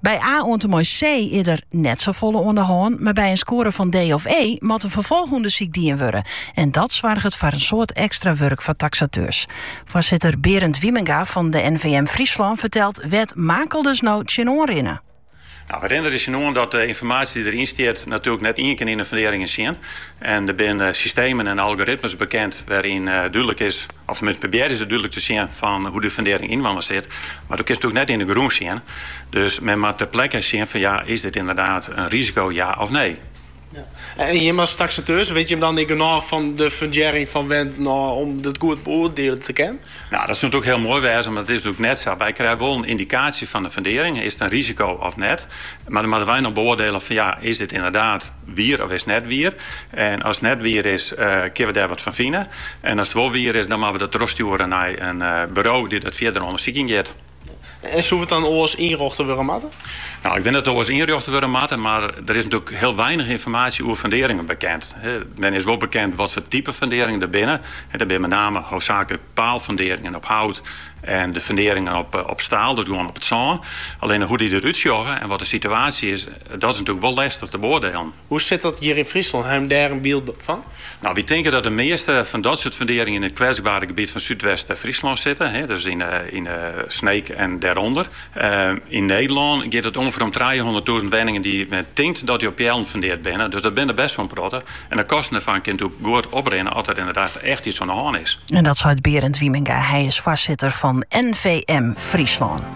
By A oan't en mei C is der net safolle oan de hân, mar by in skoare fan D of E moat in ferfolchûndersyk dien wurde en dat soarget foar in soad ekstra wurk foar taksateurs. Foarsitter Berend Wiemenga fan de NVM Fryslân fertelt wêr't makelders no tsjinoan rinne. Nou, we rinne der tsjinoan, dat de ynformaasje dy't deryn stiet natuerlik net ien kin yn de funderingen sjen. En der binne systemen en algoritmes bekend wêryn't dúdlik is, of tenminste probearje se dúdlik te sjen, fan hoe de fundering ynelkoar sit. Mar do kinst it natuurlijk net yn de grûn sjen. Dus men moat ter plekke sjen fan ja, is dit ynderdaad in risiko ja of nee? Ja. En jim as taxateur, wit jim dan ek genôch fan de fundearring fan wenten ôf om dat goed beoardiele te kinnen? Nou, dat soent ook hiel moai wêze, mar dat is dus net sa. Wy krije wol in yndikaasje fan de fundearring, is it in risiko of net? Mar dan moatte wy noch beoardiele fan ja, is dit ynderdaad wier of is net wier? En as it net wier is, kinne we dêr wat fan fine. En as it wol wier is, dan moatte we dat trochstjoere nei in buro dy't dat fierder ûndersiken giet. En soe it dan oars ynrjochte wurde moatte? Nou, ik tink dat it oars ynrjochte wurde moat, mar der is natoerlik hiel weinich ynformaasje oer funderingen bekend. Der is wol bekend watfoar type funderingen der binne. Der binne met name hoofdzakelijk paalfunderingen op hout en de funderingen op staal, dus gewoan op it sân. Allinne hoe dy der út sjogge en wat de situaasje is, dat is natoerlik wol lestich te beoardelen. Hoe sit dat hjir yn Fryslân? Hawwe jo dêr in byld fan? Nou, wy tinke dat de measte fan dat soart funderingen yn it kwetsbare gebiet fan Súdwest-Fryslân sitte, dus ûnder Sneek en dêrûnder. Yn Nederlân giet it ûngeveer om trijehûnderttûzen wenningen dy't men tinkt dat dy op peallen fundeard binne, dus dat binne der bêst wol in protte. En de kosten dêrfan kinne dus goed oprinne as der ynderdaad echt iets oan de hân is. Dat seit Berend Wiemenga, hy is foarsitter fan NVM Fryslân.